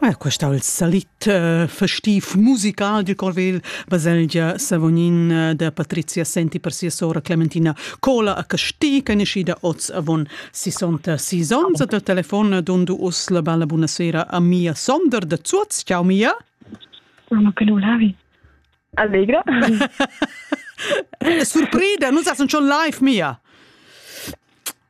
Eh, quest al salit uh, festiv musical dil Corvil baselgia Savonin uh, da Patrizia senti per sia sora Clementina Cola a Casti che nascida oz avon 66 onns. A tel telefon dondu us la bella buonasera a mia Sonder da Zuoz. Ciao mia. Buono che Lavi. Allegro. Surprida, non sa, son schon live mia.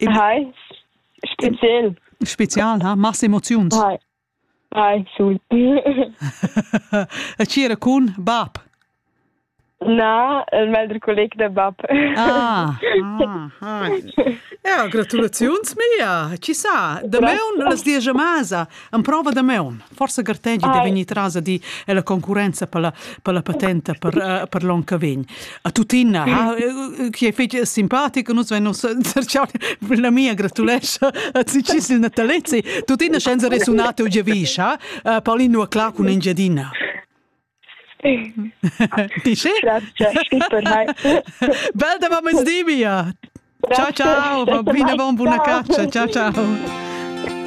Hi. Spezial. Spezial, ha? Mas emoziuns. Hi. Hi, sul. E ci era cun bab? Na, il meglio collega da bab. Ah, ah, ah. Ja, gratulaziuns mia. Ci sa, de meun las dies masa, en prova de meun. forse gartegi Ai. da vegnir tras a di e la concurrenza per la, per la patenta per, uh, per l'on che vegn. A tuttina, ha, chi è fetg simpatica, nus vennu ciao, la mia gratulescia a Cicis il natalizzi, tuttina senza resunate o geviscia, uh, Paulino a Cla con Engiadina. Ti si? Bel da mamma Divia! Ciao ciao, va bene, buona caccia, ciao ciao!